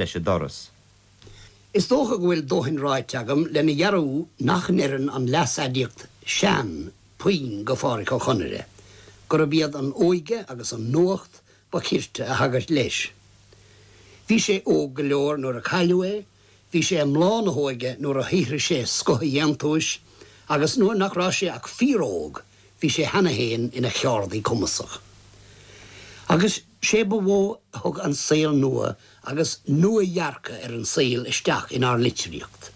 leis a' doras. Is dócha go bhfuil dóthain ráite agam lena dhearbhú nach n-oireann an leas-aidiacht 'sean', puinn, go Phádhraic Ó Conaire, gurab iad an óige agus an nuacht ba chirte a thagairt leis. Bhí sé óg go leor nuair a cailleadh é, bhí sé i mbláth na hóige nuair a shaothraigh sé scoth a dhéantúis, agus nuair nach rabh sé ach fíor-óg bhí sé cheana fhéin ina cheárdaí cumasach. Agus. Is é ba mhó a thug an saol nua agus nua-dhearcadh ar an saol isteach inár litríocht.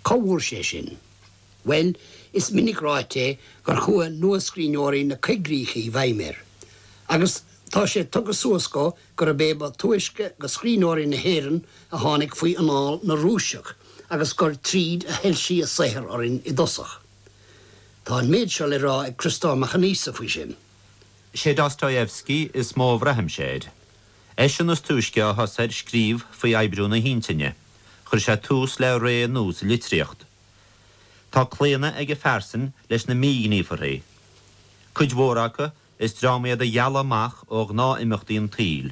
Cá bhfuair sé sin? Bhuel, is minic ráite é gur chuaigh nuascríbhneoirí na coigríche i bhfeidhm air. Agus tá sé tugtha suas dhó gurb é ba túisce de scríbhneoirí na hÉireann a tháinig faoi anáil na Rúiseach agus gur tríd a shoilsigh a saothar orainn i dtosach. Tá an méid seo le rá ag Criostóir Mac Aonghusa faoi sin. sé Dostoyevsky is mó a bhraithimse air. Eisean is túisce a thosaigh ar scríobh faoi oibriú na hintinne, chuir sé tús le ré nua sa litríocht. Tá claonadh ag a phearsain leis na míghníomharthaí. Cuid mhór acu, is dream iad a dhealaigh amach ó ghnáth-imeachtaí an tsaoil.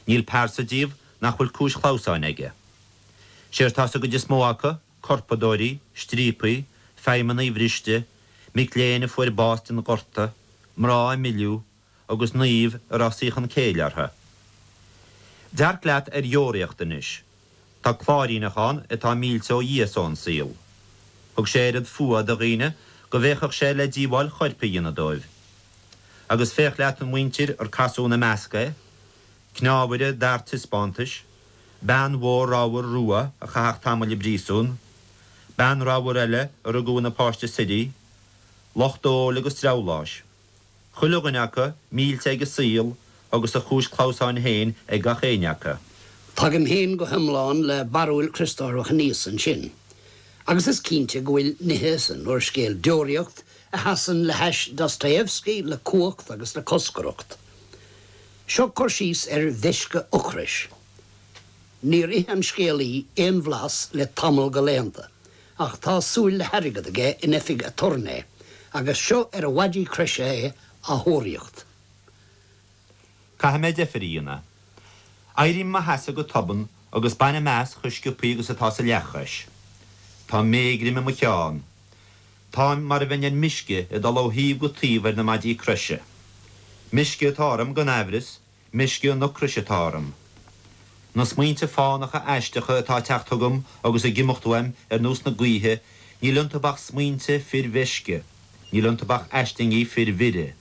Níl pearsa díobh nach bhfuil cúis chlamhsáin aige. Séard tá sa gcuid is mó acu, corpadóirí, stríopaí, feidhmeannaigh bhriste, mic léinn a fuair bás den ghorta, mná a milleadh, agus naoimh a raibh saochan céille orthu. Dearc leat ar Dheoraíocht anois. Tá cláiríneach ann atá millte ó Dhia is ón saol. Thug sé oiread fuatha do dhaoine go bhféachfadh sé le díobháil choirp a dhéanamh dóibh. Agus féach leat an mhuintir ar casadh ina measc é, cneámhaire d'fhear taispeántais, bean mhór ramhar rua a chaitheadh tamaill i bpríosún, bean ramhar eile a rugadh ina páiste suirí, lucht óil agus dreabhláis, chuile dhuine acu millte ag a saol agus a chúis clamhsáin féin ag gach éinne acu. Tagaim féin go hiomlán le barúil Chriostóir Mhac Aonghusa ansin, agus is cinnte go bhfuil nithe san úrscéal Deoraíocht a sheasann le hais Dostoevsky le cumhacht agus le coscaireacht. Seo cur síos ar mheisce ocrais. Níor ith an scéalaí aon bhlas le tamall de laethanta, ach tá súil le hairgead aige in oifig aturnae, agus seo ar a mhaidí croise é á thóraíocht. Caithfidh mé deifir a dhéanamh. Éirím i mo sheasamh go tobann agus bainim as chomh sciopthaí agus atá sa leathchois. Tá méigrim i mo cheann. Táim mar a bheinn ar meisce ag dul ó thaobh go taobh ar na maidí croise. Meisce atá orm, gan aimhreas, meisce an ocrais atá orm. Na smaointe fánacha aisteacha atá ag teacht chugam agus ag imeacht uaim ar nós na gaoithe, níl iontu ach smaointe fir mheisce, níl iontu ach aislingí fir mhire.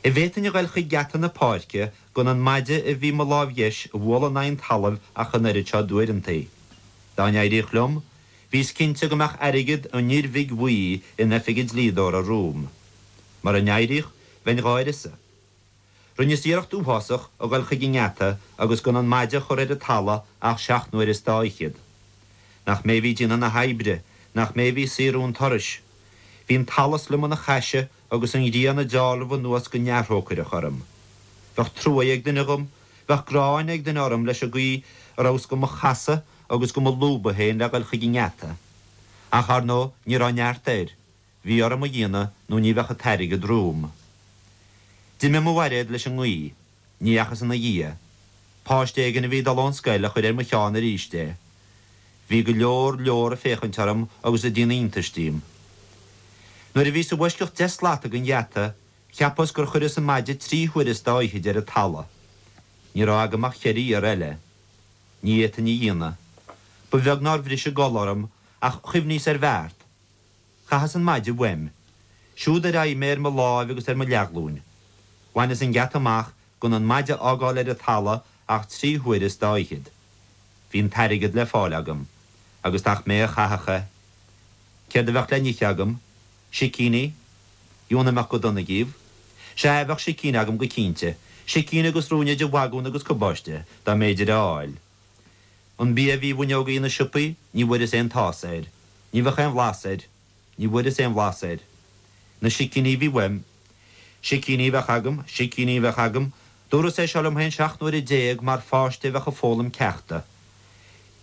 An bhféadfainn a ghoil chuig geata na páirce gan an maide a bhí i mo láimh dheis a bhualadh in aghaidh an talaimh ach an oiread seo d'uaireantaí. Dá n-éiríodh liom, Bhíos cinnte go mbeadh airgead an fhir bhig bhuí in oifig an dlíodóra romham. Mura n-éiríodh, bheinn dhá uireasa. Rinneas iarracht uathásach a dhul chuig an ngeata agus gan an maide a chur ar an talamh ach seacht n-uaire is dá fhichead. Nach mé a bhí ag déanamh na hoibre, nach mé a bhí ag saothrú an turais. Bhí an t-allas liom ina chaise agus an ghrian ag dealramh anuas go neamhthrócaireach orm. Bheadh truaighe ag duine dhom, bheadh gráin ag duine orm leis an gcaoi a rabhas do mo chasadh, agus do mo lúbadh féin le dhul chuig an ngeata. Ach, ar ndóigh, ní raibh neart air. Bhí orm a dhéanamh nó ní bheadh an t-airgead romham. D'imigh mo bhairéad leis an ngaoth. Ní dheachas ina dhiaidh. Páiste éigin a bhí ag dul ón scoil a chuir ar mo cheann aríst é. Bhí go leor leor ag féachaint orm agus ag déanamh iontais díom. Nuair a bhíos i bhfoisceacht deich slata den gheata, cheapas gur chuireas an maide trí huaire is dá fhichead ar an talamh. Ní raibh agam ach cheithre iarraidh eile. Ní fhéadfainn a dhéanamh. Ba bheag nár bhris an gol orm, ach chuimhníos ar bheart. Chaitheas an maide uaim. Siúd ar aghaidh mé ar mo láimh agus ar mo leathghlúin. Bhaineas an geata amach gan an maide a fhágáil ar an talamh ach trí huaire is dá fhichead. Bhí an t-airgead le fáil agam. Agus nach mé a chaithfeadh é. Céard a bheadh le n-ithe agam? Sicíní, dheamhan a mbeadh go dona dhíobh. Sea, bheadh sicíní agam go cinnte. Sicíní agus rúinne de bhagún agus cabáiste, dá mb'fhéidir a fháil. An bia a bhí i bhfuinneogaí na siopaí, ní bhfuaireas aon tás air. Ní bheadh aon bhlas air. Ní bhfuaireas aon bhlas air. Na sicíní a bhí uaim, Sicíní a bheadh agam, sicíní a bheadh agam, dúras é seo liom féin seacht n-uaire déag mar pháiste a bheadh ag foghlaim ceachta.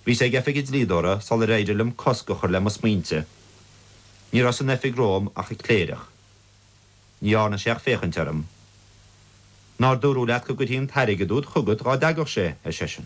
Bhíos ag oifig an dlíodóra sular éirigh liom cosc a chur le mo smaointe. Ní raibh san oifig romham ach an cléireach. Ní dhearna sé ach féachaint orm. Nár dúradh leat go gcuirfí an t-airgead úd chugat dhá dteagadh sé? ar seisean.